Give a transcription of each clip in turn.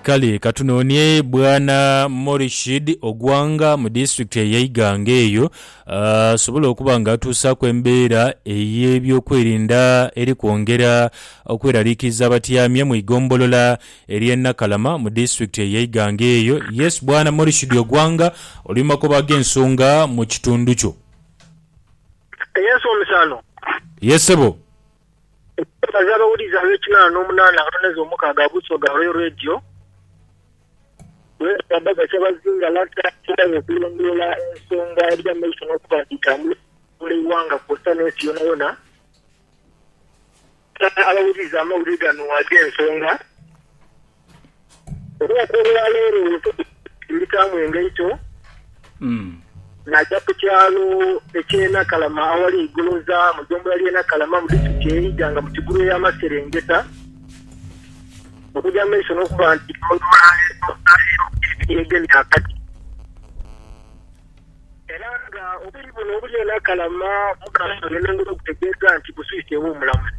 Kale ka tunoonie Bwana Morishid Ogwanga mu disitulikiti eya Iganga eyo asobole okuba nga atuusaaku embeera ey'ebyokwerinda eri kwongera okweraliikiriza abatyamye mu igombolola ery'e Nakalama mu disitulikiti eya Iganga eyo. Yes Bwana Morishid Ogwanga oli mu magoba ag'ensonga mu kitundu kyo. Yes omukyala. Yes sebo. Okwebaza abawulizi ab'ekinaana n'omunaana akatone z'omukaaga ag'Usoga Royal Radio lw'enkulaadha za Kyabazinga Lanta Asobola okulondoola ensonga edhiri amaiso n'okuba nti dhitambula okufuula eighanga kwosa n'ensi yonayona Gha abawulizi amawulire gano ag'ensonga. Olunaku olwa leero Yosebeti yayitaamu engaito, naaja ku kyalo eky'e Nakalama aghali eigoloza mu ggombolola y'e Nakalama mu disiturikiti ey'e Iganga mu kigulu ey'amaserengeta, okugya mu maiso n'okuba nti yalondoola leeso n'afiirwa ku pipi eyegemye akati. Era nga obwire buno obuli e Nakalama bukaasooya n'engulu okutegeeza nti buswiiseegho omulamuzi.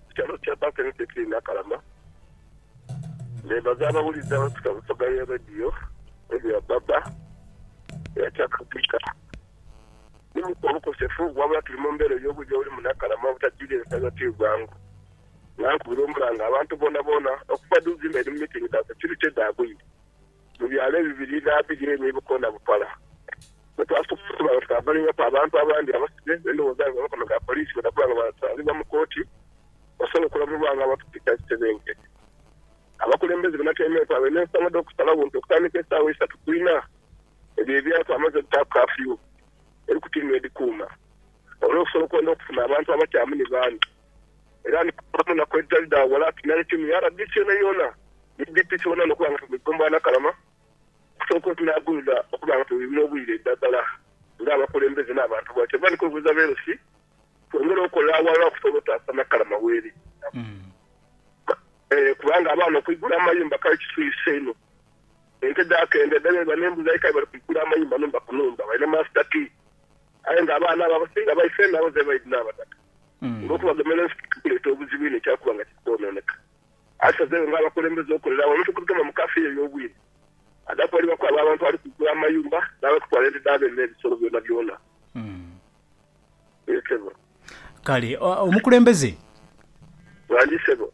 Ku kyalo kya Bakeredeti Nakalama, memba z'abawulize abapita mu soga ya Radio Emiya Baba era kyakakubika ni mu obukosefu wabula tuli mu mbeera ey'obwire obuli mu Nakalama obutajiira ensaga ti bwangu. Nankubira omulanga abantu boonaboona okuva dhu zimba eri mu mitingi dha securite dhaabwire. mu byalo ebibiri n'abiri ebyo ebikoona bupala. Bwetwasobola okuba nga twabalibwaku abantu abandi abasibe n'endhoghoza nga amakono ga poliisi bwedhakuba nga bwasangibwa mu kooti, basobola okulamulwa nga abatukiika ekisebenke. Abakulembeze banatyaimekwa nga balina ensonga dh'okusalagho nti okutandika esaawa isatu ku inha ebyo ebyapa amaze okutaaku kafyu eri kutiini edhikuuma olw'okusobola okwenda okufuna abantu abakyamu ni baani. era ni kukola mu naku edhitali dha ghala ati nale tiimu ya rdc yoonayoona ni DP tubona nokuba nga tugwegombaa nakalama okusooka otunaagumira okuba nga twewibira obwire edhagala ng'abakulembeze n'abantu bwa kyova ni kwebuuza BLC twongere okola aghalala okusobola otaasa Nakalama weeri kubanga abaana okwigula amayumba kale kiswise inho ente dhaakenda edhala eba n'embuzi aye kale bali kwigula amayumba nhumba ku nhumba balina master key aye nga abaana abo abasinga baife nabo zebaidhi n'abataka. olw'okubagemera ensi kiri kuleeta obuzibu inho kyakuba nga kiri kwonooneka. Asazeegho ng'abakulembeze okolera awamu n'okugema mu kaafiyu ey'obwire adhatwalibwaku abo abantu abali kugula amayumba n'abali kutwala ente dha beene n'ebisolo byonabyona. Yee, ssebo. Kale omukulembeze. Ghangi, ssebo.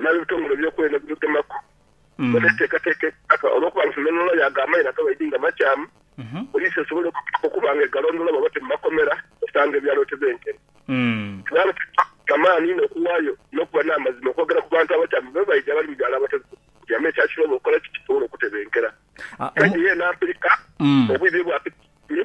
N'ab'ebitongole eby'okwerinda bitugemaku nga tweteekateeka empaka olw'okuba nga ffe n'Omuloya ag'amaino ag'abaidhi nga makyamu, poliisi esobole okuba nga egalondoola bw'aba ti mu makomera osanga ebyalo tibenkene. Kubanga kituwa amaani inho okuwaayo n'okuba n'amazima okwogera ku bantu abakyamu be baidhi abali mu byalo abatali byamu ekyakirobo okukola ki kisobole okutebenkera. Kaidi yeena mpirika, obwidhi bwe bwapita ekitundu,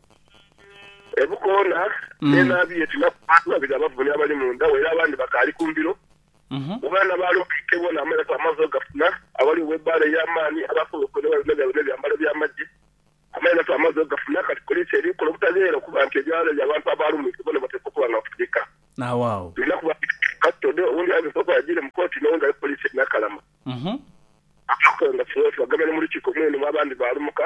Ebukoona ne naabi ye tinaku bantu babiri abavune abali mu ndagho era abandi bakaali ku mbiro. Bwebaba nabaali okwika ebwo naamalaku amaadhi ogafuna aghali ow'ebbaala ey'amaani aba asobola okwenda ewali n'oyo alina ebyambalo by'amagye. Amairaku amaadhi ogafuna kati poliisi eri kukola obutagheera okuba nti ebyalo ebyo abantu abaalumwike boona bateekwa okuba nga bafugika. Tulina kubabitiriza kasitode, owundi ayogeire okuba agiire mu kooti n'owundi ali ku poliisi e Nakalama. Abakonga kighawo tubagamire mu lukiiko mwene mu abandi baalumuka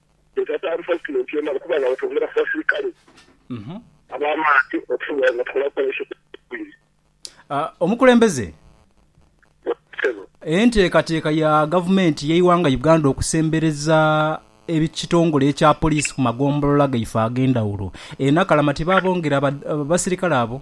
Leka taali Pulezidenti yena okuba nga batwongera ku basirikale ab'amaani okusobola nga tukola operation eidhwire. Omukulembeze, Ssebo. Enteekateeka ya Gavumenti y'eighanga Uganda okusembereza ekitongole ekya Poliisi ku magombolola gaife ag'endhawulo e Nakalama tibaabongera basirikale abo?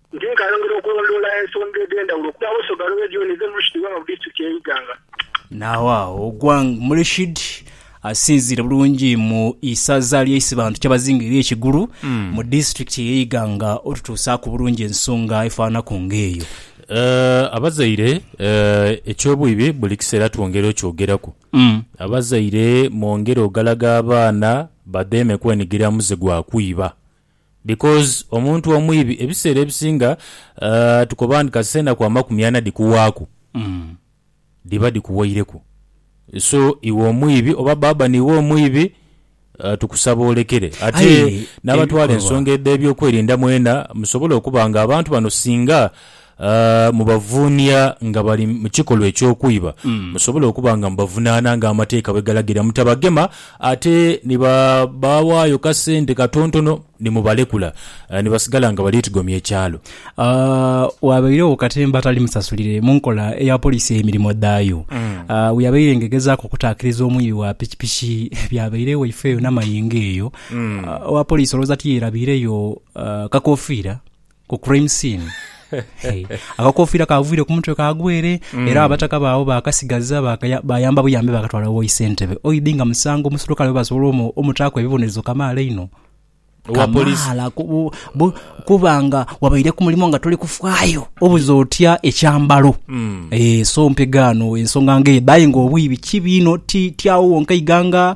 Nti nkayongera okulondoola ensonga edh'endhawulo okuva Awosu Ogalo Region dhe Murshid Gwanga mu Disitulikiti y'e Iganga. Naagho agho Ogwang Murshid asinziire bulungi mu isaza ly'e Isibantu Kyabazinga ery'e Kigulu mu Disitulikiti y'e Iganga otutuusaaku bulungi ensonga efaanaku ng'eyo. Abazaire, eky'obwibi buli kiseera twongera okyogeraku. Abazaire mwongere ogalaga abaana badheeme kwenigira muze gwa kwiba. Because omuntu omwibi ebiseera ebisinga aah tukoba nti kasita enaku amakumi ana dhikuwaaku dhiba dhikuwaireku so iwe omwibi oba baba niiwe omwibi aah tukusaba olekere ate Aye n'abatwala ebikolwa. ensonga edh'ebyokwerinda mwena musobole okuba nga abantu bano singa A Mubavuunia nga bali mu kikolwa eky'okwiba, musobole okuba nga mubavunaana ng'amateeka bwe galagira. Mutabagema ate ni babaawaayo ka sente katontono ni mubalekula ni basigala nga bali tigomya ekyalo. A Waabairegho katemba atali musasulire mu nkola eya poliisi ey'emirimo dhaayo a bwe yabaire nga egezaaku okutaakiriza omwibi wa pikipiki ebyabairegho eifeeyo n'amayengo eyo. A Owa poliisi olowooza tiyerabiireyo kakofiira Ku crime scene akakofiira kaagwire ku mutwe kaagwa ere era abataka baabo baakasigaza baakaya- baayamba buyambi baakatwala wo Isentebe. Oidhi nga musango omuserukale webasobola omu- omutaaku ebibonerezo kamaala inho. Owa police. Kamaala ku- bu- bu- kuba nga wabaire ku mulimu nga toli kufaayo. Obuze otya ekyambalo? Eh, so mpegaano ensonga ng'edho aye ng'obwibi kibi inho ti ti agho wonka ighanga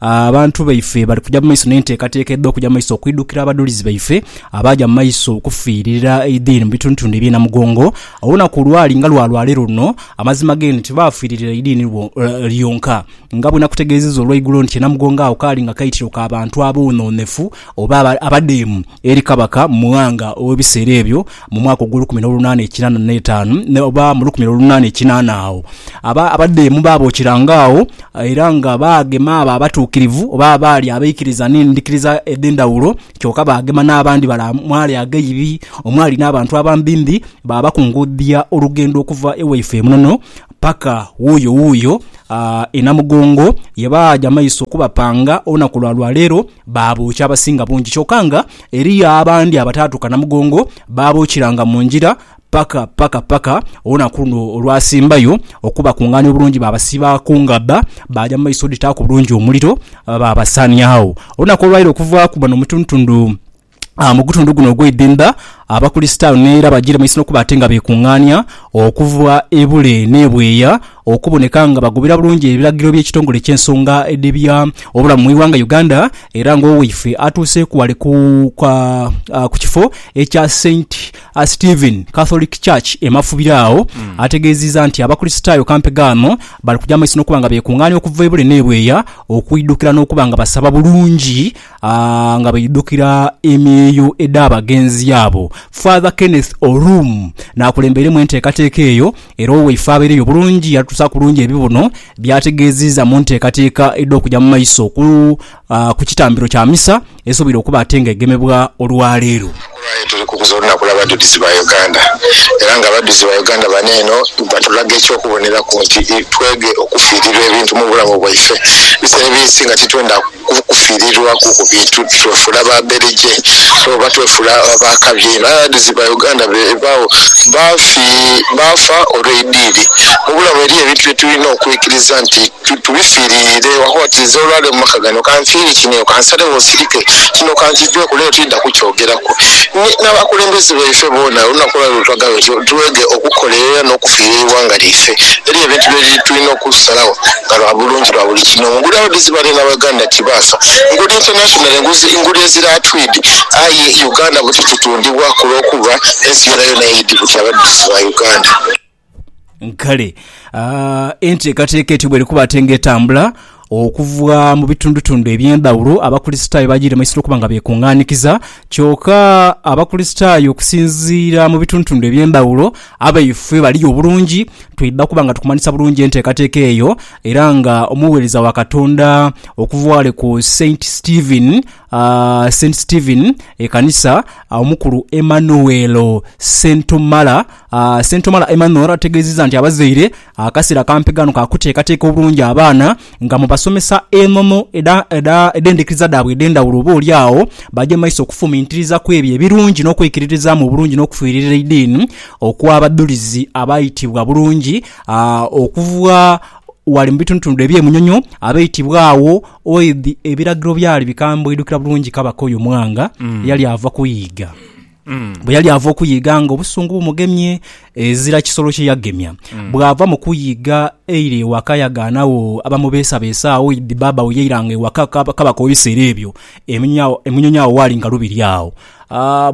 Abantu baife bali kuja mu maiso n'enteekateeka edh'okuja mu maiso okwidhukira abadhulizi baife abaaja mu maiso okufiirira eidini mu bitundhutundhu eby'e Namugongo. Olunaku lwali nga lwa lwaleero luno, amazima g'eno nti baafiiririra eidini lyonka. Nga bwenakutegeezezza olweigulo nti e Namugongo agho kaali nga kaitiro ka bantu aboonoonefu oba abadeemu eri kabaka Mughanga ow'ebiseera ebyo mu mwaka ogw'olukumi n'olunaana ekinaana n'etaanu, oba mu lukumi n'olunaana ekinaana agho abadeemu baabookiranga agho, era nga baagema abo abatuukirivu oba abaali abaikiriza n'endhikiriza edh'endhawulo, kyoka baagema n'abandi bala mwali aghaibi, omwali n'abantu abambimbi, baabakungudhia olugendo okuva ewaifo e Munono paka wuuyo wuuyo e Namugongo, ye baaja maiso okubapanga olunaku lwa lwaleero. Baabookya abasinga bungi kyoka nga eriyo abandi abataatuuka na mugongo, baabookiranga mu ngira paka paka paka olunaku luno olwasimbayo okubakungaania obulungi baabasiba ku ngabba baaja mu maiso dhitaaku bulungi omuliro baabasaania agho. Olunaku olwaire okuvaaku bano mutundutundu. mu gutundu guno ogw'eidhindha Abakulisitaayo n'era bajiire mu isi n'okuba ate nga beekungaania okuva e bule n'e bweya okuboneka nga bagoberera bulungi ebiragiro by'ekitongole ky'ensonga edh'ebya obulamu mu ighanga Uganda era ng'owaife atuuseeku ghale ku ku kifo ekya Saint Stephen Catholic Church e Mafubira agho ategeezizza nti Abakulisitaayo kampe gano bali kugya mu maiso n'okuba nga beekungaania okuva e bule n'e bweya okwidhukira n'okuba nga basaba bulungi A Nga baidhukira emyeyo edh'abagenzi abo, Father Kenneth Orum n'akulembeiremu enteekateeka eyo era owaife abaireyo bulungi yatusa kulungi ebibuno by'ategeeziiza mu nteekateeka edh'okuja mu maiso ku kitambiro kya misa esoboire okuba ate nga egemebwa olwaleero. Olwaleero tuli kukuza olunaku lw'abadhulizi ba Uganda era nga abadhulizi ba Uganda bano eno batulaga eky'okuboneraku nti twege okufiirirwa ebintu mu bulamu bwaife. Bisera ebinsi nga titwenda kufiirirwaku ku bintu twefuula ba bereje oba twefuula ba kabi einho. Aye abadhulizi ba Uganda beebagho baafa olw'eidiini. Mu bulamu eriyo ebintu bye tulina okwikiriza nti. Tibifiriire waagho oti nze olwaleero mu maka gano kanfiire kino, kansalegho nsirike kino kankigweku leero tididha kukyogeraku n'abakulembeze baife boona olunaku olwaleero lwe twagambye nti twege okukolerera n'okufiirira eighanga lyaife. Eriyo ebintu bye tulina okusalagho nga lwa bulungi bwa buli kinhoomu. Nguli abadizi bale na Uganda tibaafa. Nguli internationally nguli ezira tweed aye Uganda buti tutundibwa ku lw'okuba ensi yoonayoona eidhi buti abadizi ba Uganda. Kale enteekateeka etyo bw'eri kuba ate ng'etambula okuva mu bitundutundu eby'endhawulo, Abakristaayo bagiire mu isiro okuba nga beekungaanikiza. Kyoka Abakristaayo okusinziira mu bitundutundu eby'endhawulo, abaifwe bali yo bulungi, twidha kuba nga tukumanhisa bulungi enteekateeka eyo. Era nga omugheereza wa Katonda okuva ghale ku Saint Stephen Saint Stephen, Ekanisa, Omukulu Emmanuel Ssentomala, Ssentomala Emmanuel ategeezezza nti abazaire akaseera kampi kano ka kuteekateeka obulungi abaana nga mubasomesa enono edhendekeza dhaabwe edhendhawulo oba oli agho baje mumaiso okufumiitiriza kwebyo ebirungi n'okwekiririzaamu obulungi n'okufiirira eidiini okw'abadhulizi abaitibwa bulungi okuva wale mubitundutundu eby'emunyonyo abaitibwa agho Oidhi ebiragiro byali bikambwidhukira bulungi kabaka oyo mwanga yali ava kuyiiga. Bwe yali ava okuyiiga nga obusungu bumugemye, ezira kisolo kye yagemya. Bw'ava mu kuyiiga eira ewaka yagaanagho abamubeesabeesa agho oidhi bbaabagho yairanga ewaka kabaka ow'ebiseera ebyo, emunyonyi agho waali nga lubiri agho.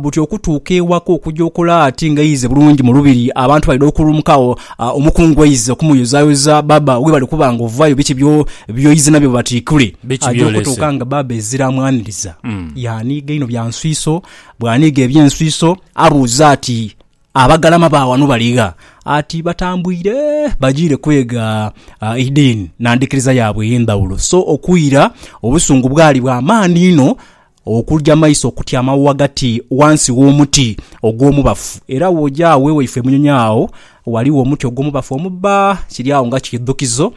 buti okutuuka ewaka okuja okola ati nga eize bulungi mu lubiri abantu baidha okulumukagho omukungu eize okumuyozayoza baba webali kuba nga ovayo biki byoize nabyo batikule aja okutuuka nga baba ezira amwaniriza yaniiga inho bya nswiso bwaniiga ebyenswiso abuuza ati abagalama ba wano baligha ati batambwire bajiire kwega eidiini nandhikiriza yaabwe eyendhawulo so okwira obusungu bwali bwa maani inho Okuja amaiso okutyamagho ghagati ghansi gh'omuti ogw'omubafu. Era bw'oja agho ewaife Munyonyo agho ghaligho omuti ogw'omubafu omubba, kiri agho nga kiidhukizo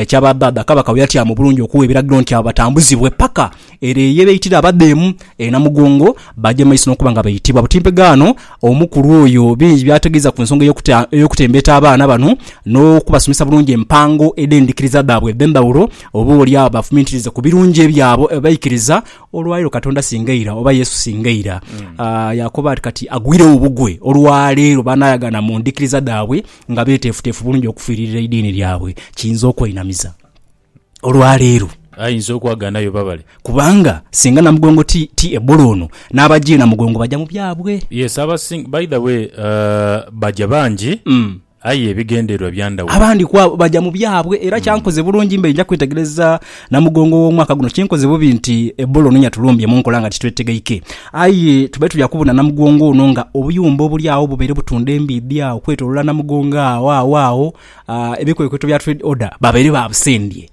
kya ba dhaadha Kabaka bwe yatyama obulungi okugha ebiragiro nti abo batambuzibwe paka ere ye beitira abadheemu e Namugongo baagye maiso n'okuba nga baitibwa butimpegaano omukulu oyo bingi by'ategeeza ku nsonga ey'okutembeeta abaana bano n'okubasomesa bulungi empango edh'endhikiriza dhaabwe edh'endhawulo Oba oli agho bafumintirize ku birungi ebyabo e baikiriza, olwa leero Katonda singa ira, oba Yesu singa ira. Ah, yaakoba ati, Kati agwiregho bugwe olwa leero baanaayagaana mu ndhikiriza dhaabwe nga beeteefuteefu bulungi okufiiririra eidiini lyabwe. Kiyinza okwainamiza olwa leero. Ayinza okwagaanayo babale. Kubanga singa Namugongo ti, ti Ebola ono, n'abagya e Namugongo baja mu byabwe. Yes, abasing, by the way, ah, baja bangi. Mm. aye ebigendererwa bya ndhawulo. Abandi ku abo baja mu byabwe. Era kyankoze bulungi mbaire nja kwetegereza Namugongo w'omwaka guno. Kinkoze bubi nti Ebola ono yatulumbye mu nkola nga titwetegeike. Aye tubaire tuja kubona Namugongo ono nga obuyumba obuli agho bubaire butunda embiidhi agho okwetolola Namugongo agho. Agho agho ebikwekweto bya Trade Order babaire babusendye.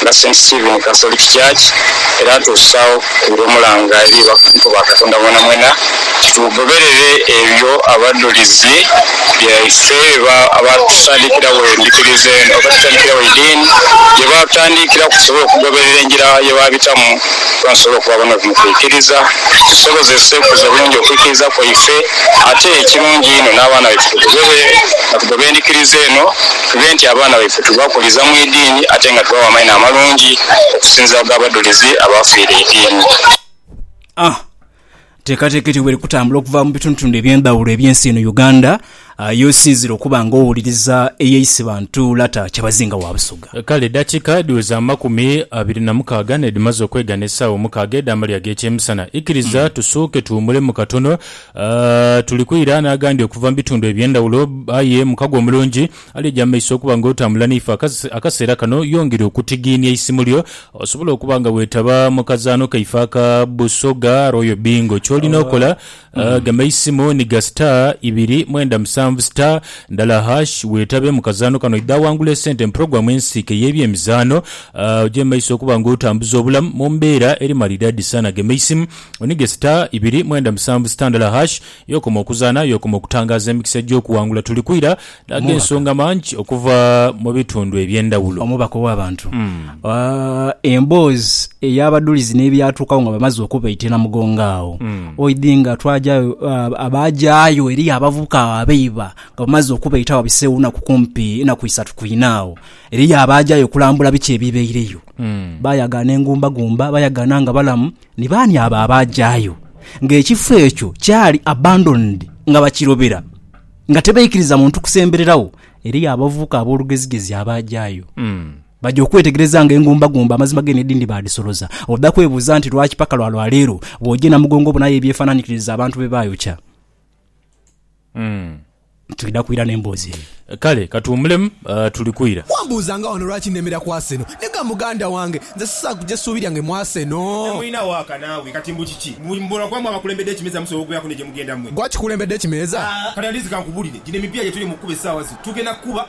nga Saint Stephen Catholic Church era atuusaagho ku lw'omulanga eri abakukuku ba Katonda mwenamwena, tugoberere ebyo abadhulizi baife bye baatutandikiragho endhikiriza eno, oba tutandikiragho eidiini gye baatutandikiraku tusobole okugoberera engira ye baabitamu kuba nitusobola okuba abanobi mu kwikiriza, tusobozese okukuza obulungi okwikiriza kwaife ate ekirungi einho n'abaana baife tugobe nga tugoba endhikiriza eno. Tube nti abaana baife tubakuliza mu idiini ate nga tubawa amaino amalungi okusinziira ku g'abadhulizi abaafiire eidiini. A. Teekateeka etyo bweri kutambula okuva mu bitundutundu eby'endhawulo eby'ensi eno Uganda y'osinziire okuba nga owuliriza eyeisiba ntuula ta Kyabazinga wa Busoga. Kale eddakiika dhiweza amakumi abiri na mukaaga n'edhimaze okwegana essaawa omukaaga edh'amalya ag'ekyemisana. Ikiriza tusuuke tuwumulemu katono A Tuli kwira n'agandi okuva mu bitundu eby'endhawulo, aye mukago omulungi ali eja mu maiso okuba nga otambula naife akase, akaseera kano. Yongera okutigiinia eisimu lyo osobole okuba nga weetaba mu kazaano kaife aka Busoga Royal Bingo. Ky'olina okola, a Gema eisimu ni ga star ibiri mwenda musanvu star ndala hash weetabe mu kazaano kano. Idha wangula esente mu pulogulaamu ensiike ey'ebyemizaano, a oje mu maiso okuba nga otambuza obulamu mu mbeera eri malidaadi sana. Gema eisimu. Onige star ibiri mwenda musanvu star ndala hash yokoma okuzaana yokoma okutangaaza emikisa egy'okuwangula Tuli kwira dhaaga ensonga mangi okuva mu bitundu eby'endhawulo. Omubaka ow'abantu emboozi ey'abadulizi n'ebyatuukawo nga bamaze okubaita e Namugongo agho oidhi nga twajayo abaajayo eriyo abavubuka agho abaiba nga bamaze okubaita agho wabiseewo naku kumpi naku isatu ku inha agho eriyo abaajayo okulambula biki ebibaireyo bayagaana engumbagumba bayagaana nga balamu Ni baani abo abaajayo ng'ekifo ekyo kyali abandoned nga bakirobera, nga tibaikiriza muntu kusembereragho? Eriyo abavubuka ab'olugezigezi abaajayo. Baja okwetegereza ng'engumbagumba amazima g'eno edindi baadhisoloza. Oda kwebuuza nti, Lwaki paka lwa lwa leero bw'oja e Namugongo obonayo ebyefaananikiriza abantu bye baayokya? Twidha kwira n'emboozi eyo. Kale katuwumulemu tuli kwira. Wambuuza nga wano lwaki nemera ku Arsenal. Nega muganda wange, nze sisobola kuja suubi lyange mu Arsenal. Temulina waaka naawe kati mbu kiki? Mbu mubolo gwammwe abakulembedde ekimeeza musobola okubeeraku ne gye mugenda mmwe? Gwe akikulembedde ekimeeza? Kati at least kankubulire, gino emipiira gye tuli mu kukuba essaawa zino tugenda kukuba.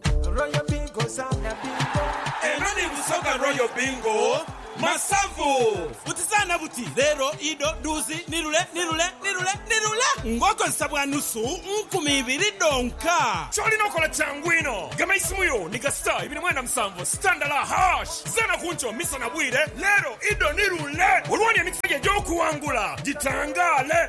Royal Bingo zaana bingo. Eno ni Busoga Royal Bingo Masavu. Buti zaana buti, leero, ido, dhuuzi, nirule, nirule, nirule, nirule! Ng'okozesa bwa nusu nkumi ibiri dhonka. Ky'olina okola kyangu inho. Gema eisimu yo ni ga star ibiri mwenda musanvu star ndala hash. Zaana ku nkyo, misana, bwire, leero, ido, nirule! Olwooni emikisa gyo egy'okuwangula gitangaale.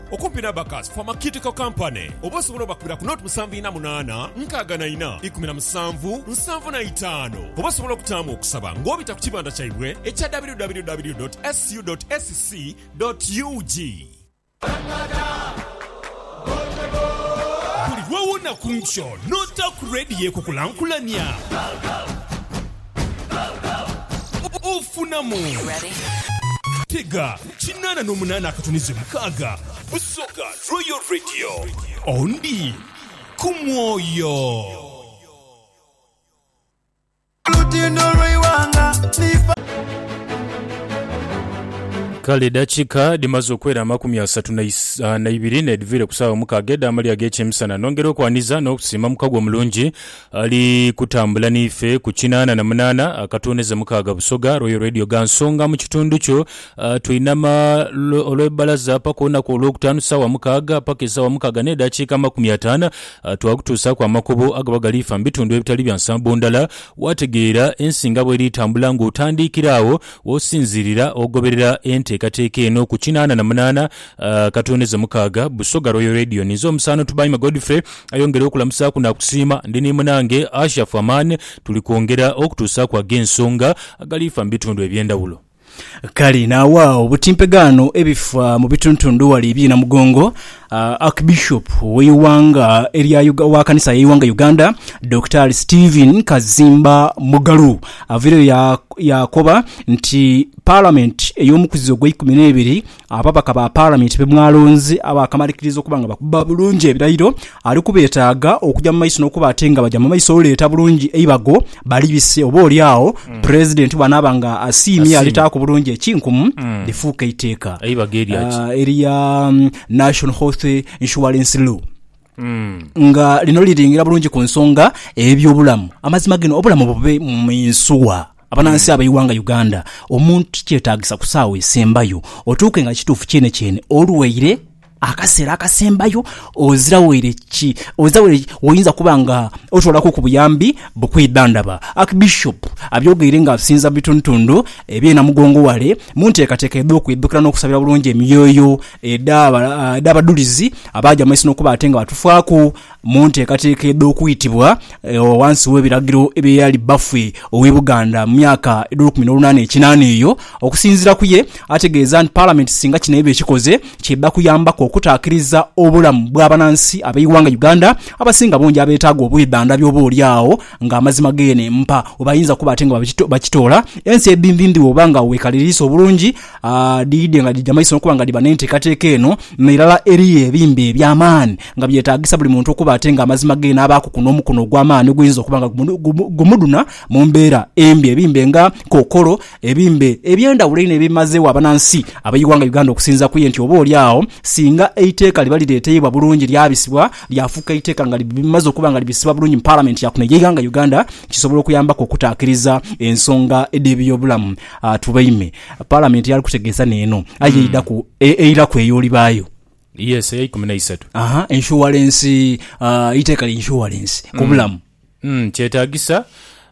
Okumpi n'Abacus Pharmaceutical Company oba osobola obakubira ku nought musanvu ina munaana nkaaga na ina ikumi na musanvu nsanvu na itaanu oba osobola okutaamu okusaba ng'obita ku kibanda kyaibwe ekya www dot scu dot sc dot ug. Buli lw'owona ku nkyo n'ota ku leediyo ekukulankulania, ofunamu. Tega. Kinaana n'omunaana akatunize mukaaga Busoga Royal Radio Ondi ku mwoyo. Kale edakika dhimaze okwera amakumi asatu naibiri nedhivire ku saawa mukaaga edhamalya ag'ekyemisana nongera okwaniza n'okusiima mukagwa omulungi Ali kutambula n'ife ku kinaana na munaana akatooneza mukaaga Busoga, Royal Radio gha Nsonga mu kitundu kyo. Twinama olw'ebbalaza paka olunaku Olwokutaanu saawa mukaaga paka esaawa mukaaga n'edhakiika amakumi ataano. Twakutuusaaku amakubo agaba galiifa mu bitundu ebitali bya nsambo ndala, waategeera ensi nga bw'eri etambula ng'otandiikira agho w'osinziirira ogoberera enteekateeka eno ku kinaana na munaana. Katonda eze mukaaga, Busoga Royal Radio. Ninze omusaano Tubaime Godfrey, ayongere okulamusaaku naakusiima. Ndi ni munange Ashafu Amaani, tuli kwongera okutuusaaku ag'ensonga agaliifa mu bitundu eby'endhawulo. Kale naagha obutimpegaano ebifa mu bituntundu ghale eby'e Namugongo, Archbishop w'eighanga erya Uga, owa kanisa y'eighanga Uganda, Daktari Stephen Kazimba Mugalu avaireyo ya, yaakoba nti Parliament ey'omukuzi ogweikumi n'ebiri Ababaka ba Palamenti be mwalonze abaakamalikiriza okuba nga bakuba bulungi ebirayiro, ali kubeetaaga okugya mu maiso n'okuba ate nga bagya mu maiso oleeta bulungi eibago balibise oba oli agho Pulezidenti bw'anaaba nga asiimye yalitaaku bulungi ekinkumu lifuuke eiteeka erya National Health Insurance Law nga lino liringira bulungi ku nsonga ey'ebyobulamu. Amazima gino obulamu bube mu Yinsuwa. Abanansi ab'eighanga Uganda, omuntu tikyetaagisa ku saawa esembayo otuuke nga kituufu kyene kyene olwaire akaseera akasembayo ozira waire ki ozira waire woyinza kuba nga otwalaku ku buyambi bukwidhandhaba. Archbishop abyogeire nga asinza mu bitundhutundhu eby'e Namugongo ghale mu nteekateeka edh'okwidhukira n'okusabira bulungi emyoyo edh'abadhulizi abaaja mu maiso n'okuba ate nga batufaaku Mu nteekateeka edh'okwitibwa ghansi w'ebiragiro eby'eyali bbaffe ow'e Buganda mu myaka edh'olukumi n'olunaana ekinaana eyo, okusinziira ku ye, ategeeza nti Palamenti singa kino eba ekikoze, ky'edha kuyambaku okutaakiriza obulamu bw'abanansi ab'eighanga Uganda abasinga bungi abeetaaga obwedhandhabi oba oli agho ng'amazima geene mpa webayinza kuba ate nga bakitoola ensi edhindhindhi woba nga weekaliriisa obulungi Dhiidhi nga dhija maiso n'okuba nga dhiba n'enteekateeka eno, n'irala eriyo ebimbe eby'amaani nga byetaagisa buli muntu okuba ate nga amazima ge n'abaakuku n'omukono ogw'amaani oguyinza okuba nga gumudhuna mu mbeera embi. Ebimbe nga kookolo, ebimbe eby'endhawulo einho ebimazeegho abanansi ab'eighanga Uganda okusinza kuye nti oba oli agho singa eiteeka liba lireeteibwa bulungi lyabisibwa lyafuuka eiteeka nga limaze okuba nga libisibwa bulungi mu Palamenti ya kuno ey'eighanga Uganda kisobola okuyambaku okutaakiriza ensonga edh'ebyobulamu. Tubaime. Palamenti yali kutegeesa n'eno, aye eidaku e- eiraku eyo olibaayo. Yes, eya ikumi n'eisatu. Aha, inshuwalensi, ah, eiteeka lya inshuwalensi ku bulamu. Mm, kyetaagisa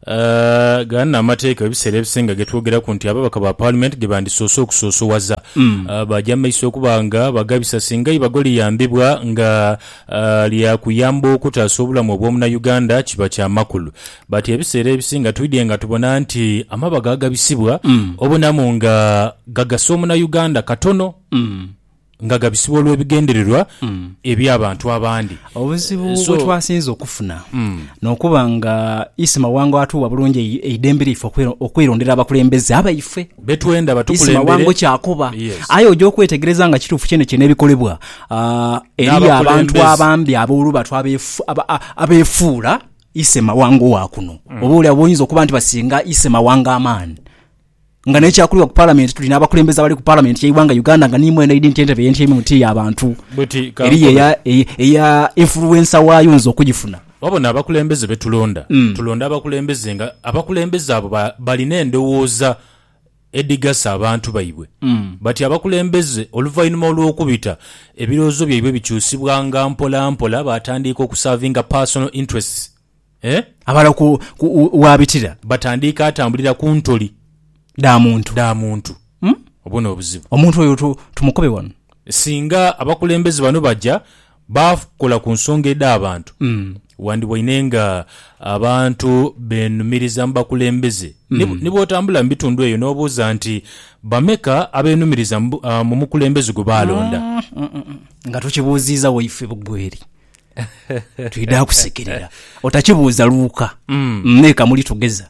eh, gano n'amateeka ebiseera ebisinga ge twogeraku nti ababaka ba Paalimenti ge bandisoose okusoosowaza. Eh, Baja mu maiso okuba nga bagabisa singa eibago liyambibwa nga eh, lya kuyamba okutaasa obulamu obw'Omunauganda kiba kya makulu. But ebiseera ebisinga twidhye nga tubona nti amabago agabisibwa obonamu nga gagasa omuna Uganda katono nga gabisibwa olwebigendererwa ebya bantu abandi. Obuzibu So- bwetwasinze okufuna nokuba nga Isi Mawango atuwa bulungi ei- eidembe lyaife okwe- okwerondera abakulembeze abaife. Betwenda Isi batukulembere. Mawango kyakoba Yes. aye oja okwetegereza nga kituufu kyenekyene ebikolebwa ah, eriyo abantu N'abakulembeze. abambi aboluba twabefu- aba- a- abefuula Ise mawanga owa kuno. Oboolyawo boyinza okuba nti basinga ise mawanga amaani. Nga n'ekyakulirwa ku Palamenti, tuli n'abakulembeze abali ku Palamenti y'eighanga Uganda nga niimwo eno eidhi nti entebe ye ntyeimu ti ya bantu. Eriyo eya, eya influencer waayo oyinza okugifuna. Wabona abakulembeze be tulonda, tulonda abakulembeze nga abakulembeze abo ba, balina endowooza edhigasa abantu baibwe. Bati abakulembeze oluvainhuma olw'okubita, ebirowoozo byaibwe bikyusibwanga mpola mpola baatandiika okusaavinga personal interests eh. Abala ku wabitira. Batandiika atambulira ku ntoli. Dha muntu. Dha muntu. Obwo n'obuzibu. Omuntu oyo tumukobe wano. Singa abakulembeze bano baja Baafukula ku nsonga edh'abantu. Wandiboine nga abantu beenumiriza mu bakulembeze. Ni bw'otambula mu bitundu eyo n'obuuza nti, Bameka abeenumiriza mu mukulembeze gwe baalonda? Nga tokibuuziiza waife Bugweri, twidha kusekerera. Otakibuuza luuka, me kamuli tugeza.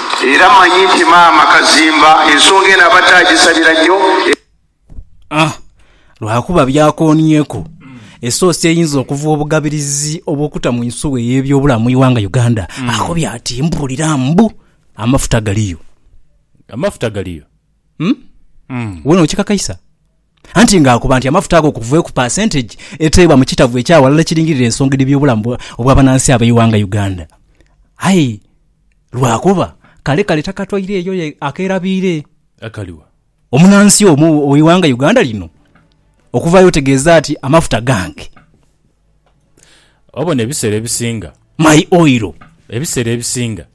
Era manyi nti maama Kazimba ensonga eno abadde agisabira nnyo. Ah! Lwakuba byakoonyeku esoosi eyinza okuva obugabirizi obw'okuta mu nsuwa ey'ebyobulamu mu ighanga Uganda. Akobye ati, Mpulira mbu amafuta galiyo. Amafuta galiyo? Umm. Umm. Wena okikakaisa? anti ng'akoba nti amafuta ago okuva ku paasentegi eteebwa mu kitavu ekya ghalala ekiringirira ensonga edhibi obulamu obw'abanansi ab'eighanga Uganda. Aye lwakuba kale kale takatwaire eyo ye akeerabiire. Akali wa? Omunansi omu ow'eighanga Uganda lino okuvaayo otegeeza ati amafuta gange. Obona ebiseera ebisinga. My oil. Ebiseera ebisinga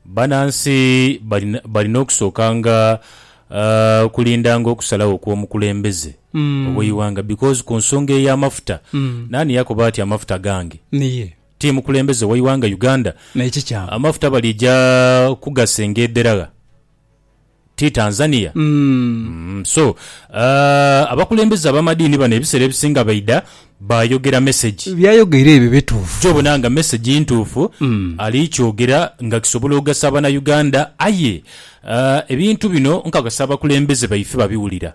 banansi balina okusookanga okulindanga okusalagho kw'omukulembeze ow'eighanga because ku nsonga ey'amafuta naani yakoba ati amafuta gange? Ti mukulembeze w'eighanga Uganda. Amafuta balija kugasenga edheragha. ti Tanzania? Umm so aah abakulembeze abamadiini bano ebisera ebisinga baidha bayogera message. Byayogeire ebyo bituufu. Gye obona nga message ntuufu ali kyogera nga kisobola ogasa abana Uganda aye aah ebintu bino nkakasa abakulembeze baife babiwulira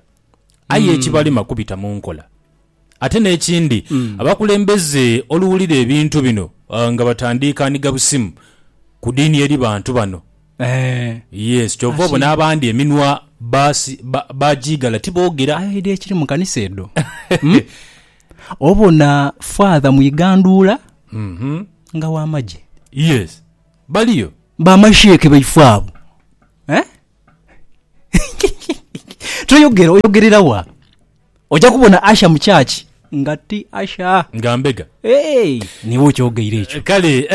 aye ekibalema kubita munkola. Ate n'ekindi, abakulembeze oluwulira ebintu bino nga batandiika ni gabusimu ku diini eri bantu bano. Yes, kyova obona abandi eminwa bajiigala tiboogera. Aye oidha ekiri mu kanisa edho obona Father mu igandhuula nga wa magye. Yes, baliyo. Ba masheikh baife abo toyogera, oyogerera wa? Oja kubona usher mu church nga ti usher. Nga mbega. Eeh niiwe okyogeire ekyo. Kale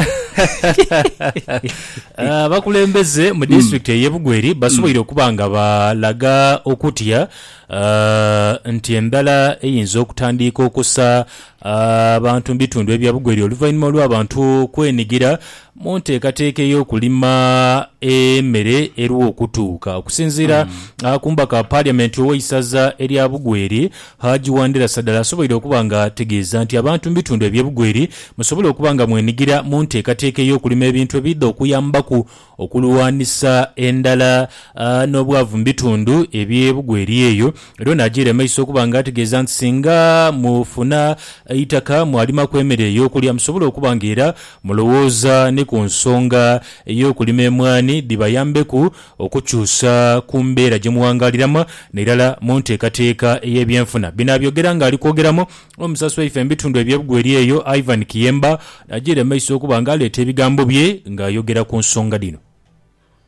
abakulembeze mu disitulikiti ey'e Bugweri basoboire okuba nga balaga okutya nti endhala eyinza okutandiika okusa abantu mu bitundu ebya Bugweri oluvainhuma olw'abantu okwenigira mu nteekateeka ey'okulima emere eruwa okutuuka. Okusinziira ku mubaka wa Parliament ow'eisaza erya Bugweri, Hajji Wandera Sadala asoboire okuba nga ategeeza nti abantu mu bitundu ebye Bugweri musobole okuba nga mwenigira mu nteekateeka ey'okulima ebintu ebiidha okuyambaku Okulwanisa endhala n'obwavu mu bitundu eby'e Bugweri eyo. Era ono ajiire maiso okuba nga ategeeza nti singa mufuna eitaka mwalimaku emere ey'okulya musobole okuba nga era mulowooza ni ku nsonga ey'okulima emwaani dhibayambeku okukyusa ku mbeera gye muwangaaliramu n'irala mu nteekateeka ey'ebyenfuna. Bino abyogera ng'ali kwogeramu Omusaasi waife mu bitundu eby'ebugweri eyo, Ivan Kiyemba, ajiire mu maiso okuba nga aleeta ebigambo bye nga ayogera ku nsonga dhino.